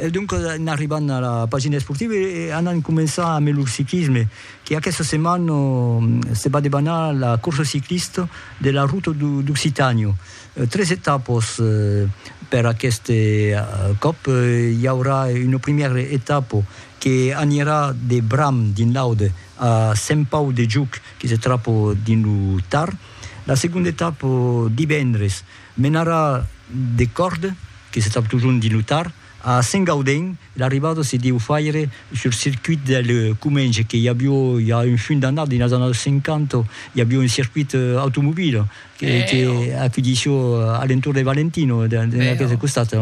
E doncas en arribant a la pagina esportiva e anant començar ambe lo ciclisme que aquesta setmana se va debanar la corsa ciclista de la Ruta d'Occitània. Tres etapas per aquest còp, i aurà una primièra etapa que anirà de Bram dins l'Aude a Sent Pau de Juc que se trapa dins lo Tar. La segonda etapa divendres Mena ra de còrde, que se trap totjorn dins lo Tar, a Sengaudèn, e l'arribada se deu faire sur circuit del Comenge, que i avió i a un funt d'annadas, dins las annadas 50, i avió un circuit automobile, que acudissió a l'entorn de Valentino, dins aqueste costat.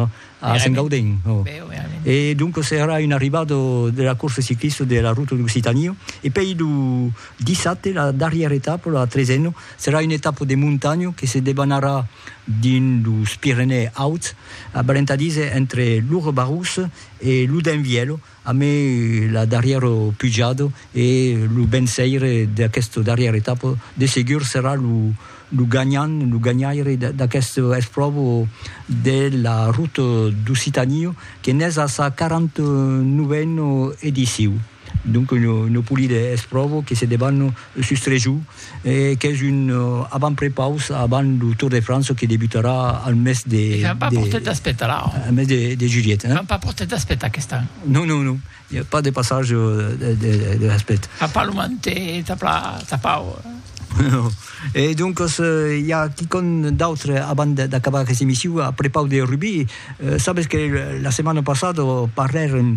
A Sent Gauden, oh. Be, oh, verament. E donc serà un arribat de la corsa ciclista de la Ruta d'Occitània. E pei lo dissabte, la darrièra etapa, la tresena, serà una etapa de montanha que se debanarà dins los Pirenèus Auts, a Balentadís entre Lourre-Barrous e Loudun-Vielho, Amé la darrièro pujado e lo benseire d'aquesto darrièr etapa de segur serà lo lo ganhant, lo ganhaire d'aquesto espròvo de la Route d'Occitanie que n'es a sa 49 ena ediciu. Donc una polida espròvo que se debanno Sustrejo qu'es un avant-prepaus avant lo Tour de França que debutarà al mes de... E que n'an pas portat d'aspetar la? Al mes de julhet, hein? N'an pas portat d'aspetar aquest an? Non, non, non, i a pas de passage de l'aspect. Fa pas lo manté, tap la, tapau. Non. E doncas i a quicòm d'autre avant d'acabar aquesta emission a prepaus de rugbi? Sabes que la setmana passada parlèrem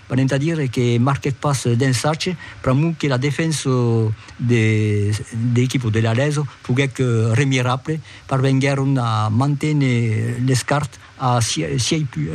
Venent a dire que marquèc pas d'ensatge, pr'amor que la defensa de l'equipa de l'Aleso foguèc remirable, parvenguèron a manténer l'escart a sièis punts,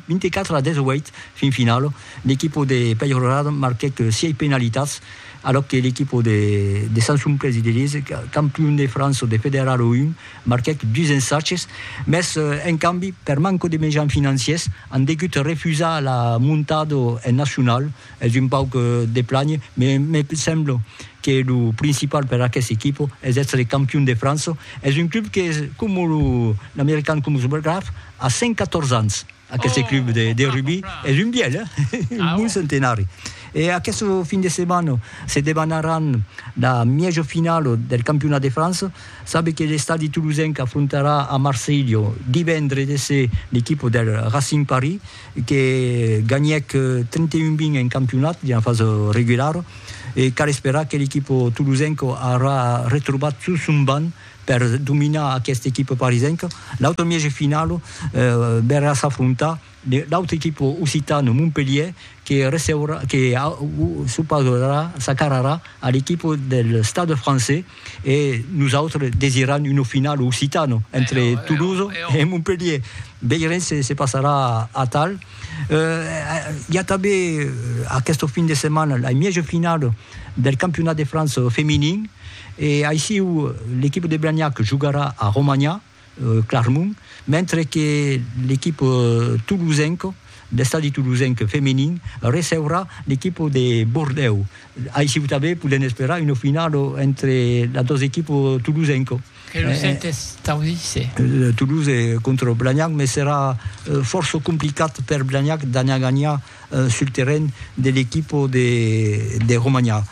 24 a 18, fin finala. L'equipa de Peyrelade marquèc sièis penalitats, alòc que l'equipa de Sant Sumplés i de Liège, campion de França de Federal 1, Marquèc dus ensatges, mès en cambi, per manco de mejans financiers, an degut refusar la montada en nacional. Es un pauc de plànher, mès me sembla que lo principal per aqueste equipa es èstre campion de França. Es un club que, coma lo American Columbus Graphs, a 114 ans. Aqueste club de rugbi es un bièlh, un bon centenari. E aqueste fin de setmana se debanaràn la mièja finala del campionat de França. Sabe que l'estadi tolosenc afrontarà a Marselha divendre de se l'equipa del Racing Paris que ganhèc 31 20 en campionat dins la fasa regulara e cal esperar que l'equipa tolosenca aurà retrobat tot son banc Per dominar aquesta equipa parisenca, l'autre mièg de finala verrà s'afrontar l'autre equipa occitana Montpelhier que receurà, que s'opausarà, s'acararà a l'equipa del Stade Français e nosautres desiram una finala occitana entre Toulouse e Montpelhier. Veirem se se passarà atal. Hi a tanben aquesta fin de setmana la mièja finala del campionat de França feminin, E aissiu, l'equipa de Blagnac jogarà a Romanha, Clarmont, mentre que l'equipa tolosenca, l'Estadi Tolosenc feminin, receurà l'equipa de Bordèu. Aissiu tanben podèm esperar una finala entre las dos equipas tolosenca. Que lo sèt es tau dice. Toulouse contra Blagnac, mès serà fòrça complicat per Blagnac d'anar ganhar sul terren de l'equipo de Romanha.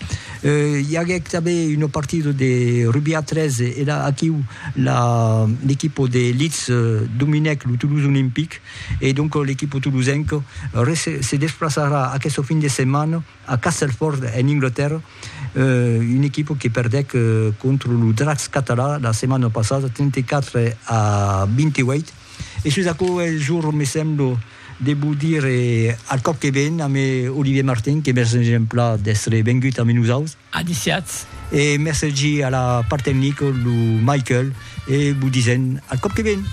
I aguèc tanben una partida de rugbi a tres e la aquiu l'equipo de Leeds dominèc lo Toulouse Olympic e donc l'equipo tolosenca se desplaçarà aquesta fin de setmana a Castelford en Anglatèrra, una equipa que perdèc contra lo Dracs catalan la setmana passada 34 a 28 e sus aquò es jorn me sembla. Devo dire al còp que ven a me Olivier Martin que mercen exempla d'èstre vengut amé nosaus. Adiciatz. E mercegi a la part tecnico lo Michael e vo disen al còp que ven.